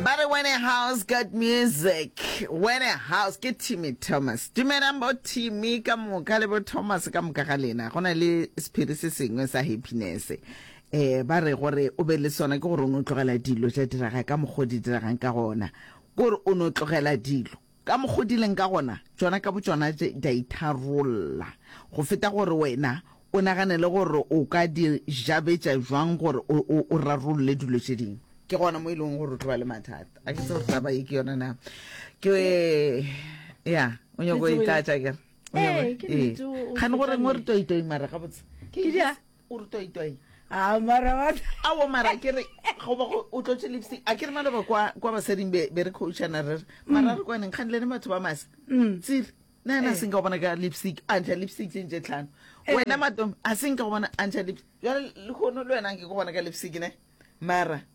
ba re wene house got music wene house ke timmy thomas dumelang bo timmy ka moka le bo thomas ka moka ga lena go na le sephiri se sengwe sa happiness eh ba re gore o be le sona ke gore o no tlogela dilo tša diraga ka mokgwa o di diragang ka gona kore o no tlogela dilo Ka mokgo di leng ka gona, tšona ka botšona tše di a itharolla, go feta gore wena o naganele gore o ka di jabetša bjang gore o, o, o rarolle dilo tše dingwe. Ke gona mo e lego gore o tlo ba le mathata. A ke tsebe gore taba ye ke yona na. Ke, ya, o nyako e tlatša, ke re. O nyako, Ee, ke ee. nnete, o- o Kgane gore feta ngwe re nnete. toitoi mara gabotse. Ke di a- o re toitoi a mara wa a wo mara ke re go ba go o tlotse lipstick a ke re maloba kwa kwa basading be be re coachana re re mara re kwaneng kgang le ne batho ba masa tsiri na ena a seng ka go bona ka lipstick a ntsha lipstick tse ntse tlhano wena matomi a seng ka go bona a ntsha lipstick jale le kgono le wena ke go bona ka lipstick ne mara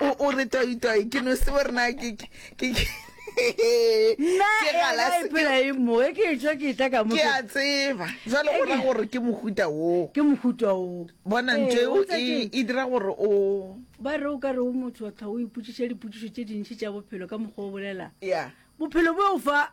o o re toi toi ke no se borna ke ke nna ke galase ke mo e ke tswa ke tla ka mo ke a tseba jwale go ra gore ke mohuta wo ke mohuta wo bona ntwe o e e dira gore o ba re o ka re o motho wa tlha o iputsitse diputso tse dintsi tsa bophelo ka mogo o bolela ya bophelo bo fa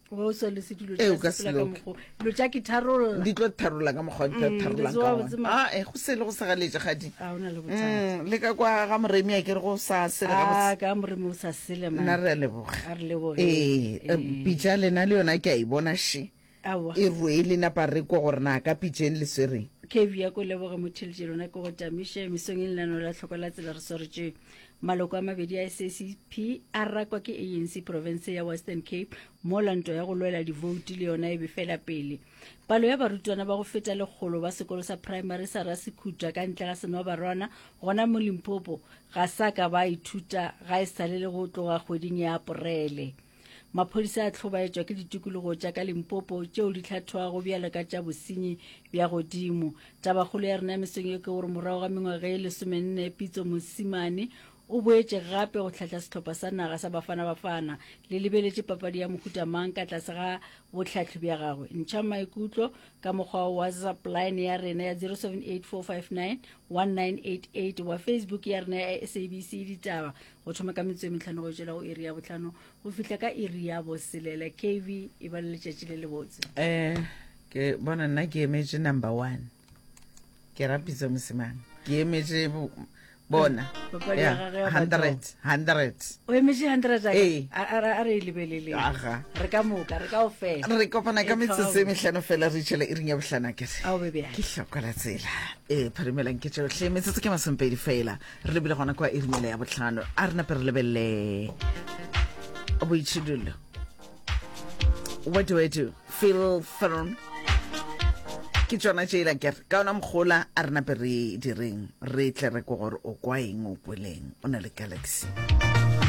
o so le se dilo Ee, o ka se loke. mokgo dilo tša ke tharolla di tlo tharola ka mokgwa di tlo tharolang Mm, letso ka wa ona. botsema. Ah, eh, go sele go segaletse gadi a o na le bothata Mm, le ka kwa ga moremi a ke re go sa sele a gabotse ka moremi o sa sele nna man re a leboga a re leboge ee eh, pitša lena le yona ke a e bona she awa e rwele napa re ko gore na ka pitšeng le swereng kebi ya ko leboge motheletse lona ke go tamiše mesong e lenano la tlhoko la tsela re swaretše Maloko a mabedi a SACP a rakwa ke ANC profense ya Western Cape mola nto ya go lwela divouti le yona e befela pele. Palo ya barutwana ba go feta lekgolo ba sekolo sa primary sa Rasekhutwa ka ntle ga Senobarwana gona mo Limpopo ga sa ka ba ithuta ga e sale le go tloga kgweding ya Aporele. Maphodisa a tlhobaetšwa ke ditikologo tša ka Limpopo tšeo di tlhathoago bjalo ka tša bosenyi bja godimo. Tabakgolo ya rena ya mesong ye ke gore morago ga mengwaga e lesomenne Pitso Mosimane o boetše gape go tlhahla sehlopha sa naga sa Bafana Bafana. Le lebeletše papadi ya mohuta mang ka tlase ga bohlahli bja gagwe? Ntšha maikutlo ka mokgwa wa WhatsApp line ya rena ya 0784591988 wa Facebook ya rena ya SABC Ditaba go thoma ka metso e metlhano go tšela go iri ya botlhano go fihla ka iri ya boselela kv e ba le letšatši le le botse um ke bona nna ke emetše number one ke rapitse mosimane ke emetše bona hundred hundred o emetše hundred ee. a re e lebelele re ka moka re kao fela re kopana ka metsotso e metlhano fela re itšhela e ring ya botlhana kere ke tlhokola tsela ee phadimelang ke tšotlhe metsotso ke masompedi fela re lebile gona kwa irimele ya botlhano a re nape re lebelele boitshidilo what do i do feel firm ke tsona tše ela kere ka ona mogola a re nape re direng re tle re ko gore o kwa eng o kweleng o na le galaxy